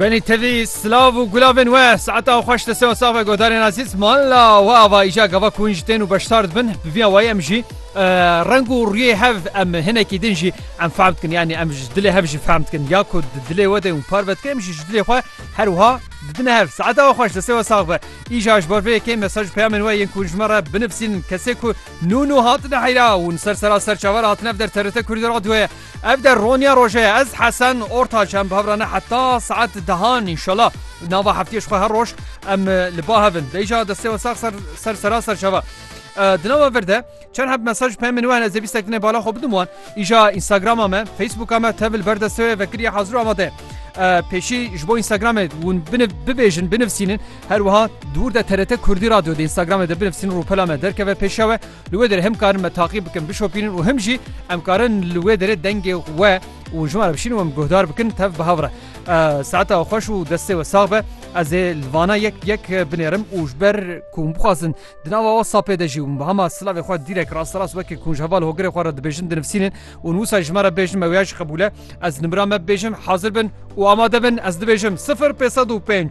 Benî tevî silav û gulavên we saeta xweş li seo save godarên azîz mala we ava îja gava ku hûn ji tên û beşdar dibin bi vîya wayî em jî reng û rûyê hev em hinekî din jî em fehm dikin yanî em ji dilê hev jî fehm dikin ya ku di dilê we de û par ve dikim jî ji dilê xwe her wiha didine hev saeta we xweş li seo sax be îja ji bar vê yekê mesaj peyamên we yên ku ji me re binivîsîn kesê ku nû nû hatine heyra hûn ser sera serçaver hatine derterite kurdî radyoye Ev der roniya roje ye ez Hesen Ortaç em bavrane heta saet dehan inşallah nava heftiyê ji xwe her roj em li ba hevin deyja destê we sax ser ser sera serçava di nava vir de çend heb mesaj pê min wen ez ê bîstek dinê bala xwe bidim wan îja Instagrama me Facebooka me tevil ber destê wê vekiriye hazir û amade peşî ji bo Instagramê hûn biniv bibêjin binivsînin her wiha dûr de TRT Kurdî radyo de Instagramê de binivsîn rûpela me derkeve pêşewe Li wê derê him karin me taqî bikin, bişopînin û him jî em karin li wê derê dengê we û ji me re bişînin û em guhdar bikin tev bi hev re. Saeta xweş û destê we sax be. Ez ê li vana yek yek binêrim û ji ber ku hûn bixwazin di nava WhatsAppê de jî hûn bi hema silavê xwe dîrek rasterast wekî ku hûn ji heval hogirê xwe re dibêjin dinivîsînin û hûn wisa ji me re bêjin me wêya jî qebûl e. Ez nimira me bibêjim hazir bin û amade bin ez dibêjim sifir pêz sed û pênc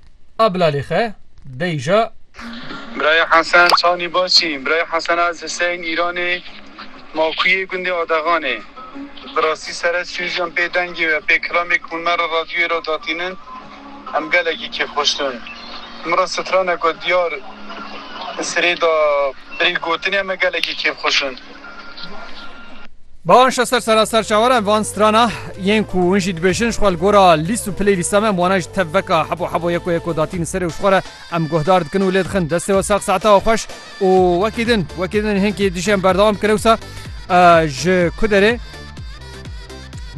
A bila lê xe dey ja. Birayê Hesen çanî baş î. Birayê Hesen ez ji seyên Îranê Makuyê gundê Adexanê. Bi rastî sere sûcîyan pê dengê we pê kilamê ku min me re radyoyê re datînin em gelekî kêf xweş dûn. Min re straneke diyar sirê da birî gotinê em me gelekî kêf xweş in. Bahan şester sera ser çawaran van strana yên ku hûn jî dibêjin ji xwe li gora lîst û pilê lîsta me em wana ji tev veka hebo hebo yeko yeko datîn li serê û ji xwe re em guhdar dikin û lê dixin destê we sax saeta we xweş û wekî din wekî din hênkî dijî em berdewam bikir ewsa ji ku derê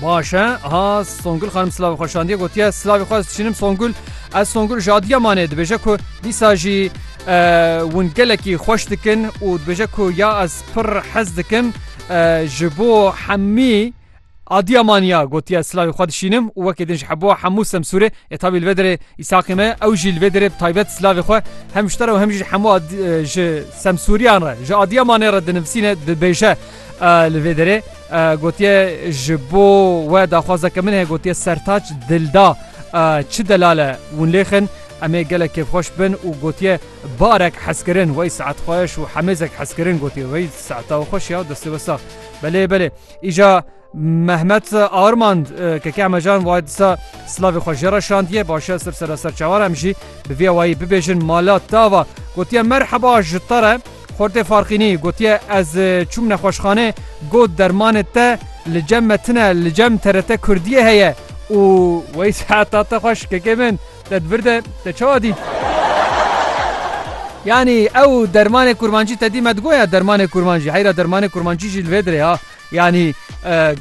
Baş e ha Songul xanim silavê xwe şandiye gotiye silavê xwe çînim Songul ez Songul jadiya manê dibêje ku dîsa jî hûn gelekî xweş dikin û dibêje ku ya ez pir hez dikim ji bo hemî Adiya maniya gotiye silavê xwe dişînim û wekê din ji hebo hemû semsûrê e tabî li vê derê îsaqê me ew jî li vê derê taybet silavê xwe hem ji te re hem jî ji hemû ji semsûriyan re ji adiya manê re dinivîsîne dibêje li vê derê Gotiye ji bo we daxwazeke min heye gotiye sertaç dilda çi delale win lêxin em ê gelek kêfxweş bin û gotiye barek hezkirin wey saet xweş û hemêzek hezkirin gotiye wey saeta xweş ya destê wesa belê belê îja Mehmet Armand keke emejan way disa silavê xwe jê re şandiye başe sir sera serçawan em jî bi vê wayî bibêjin mala tava gotiye merheba ji te re Xortê Farqînî gotiye ez çûm nexweşxane got dermanê te li cem me tune li cem TRT Kurdiyê heye û Weys heta te xweş kekê min te di vir de te çawa dît? Yanî ew dermanê kurmancî te dî me digoya dermanê kurmancî heyra dermanê kurmancî jî li vê dirê ha. Yanî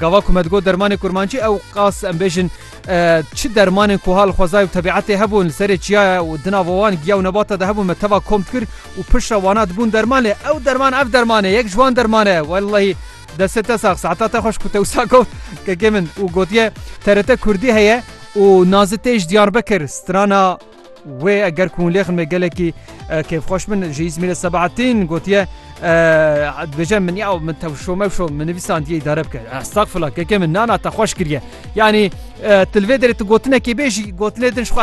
gava ku me digot dermanê kurmancî ew qas em bêjin çi dermanên ku ha li xwezayê û tebîetê hebûn li serê çiyaya û di nava wan giya û nebata de hebûn me teva kom dikir û piştre wana dibûn derman lê ew derman ev derman e yek ji wan derman e wellahî destê te sax saeta te xweş ku te wisa got kekê min û gotiye TRT kurdî heye û nazi tê ji Diyarbekir strana Wê eger ku hûn lê xin me gelekî kêfxweş bin ji Îzmîrê Sebahattin gotiye dibêje min ya min tewşo mewşo min nivîsandiyê îdare bike. Estagfirullah keke min nana te xweş kiriye. Yanî tilvê derê tu gotinekê bê jî gotinê din ji xwe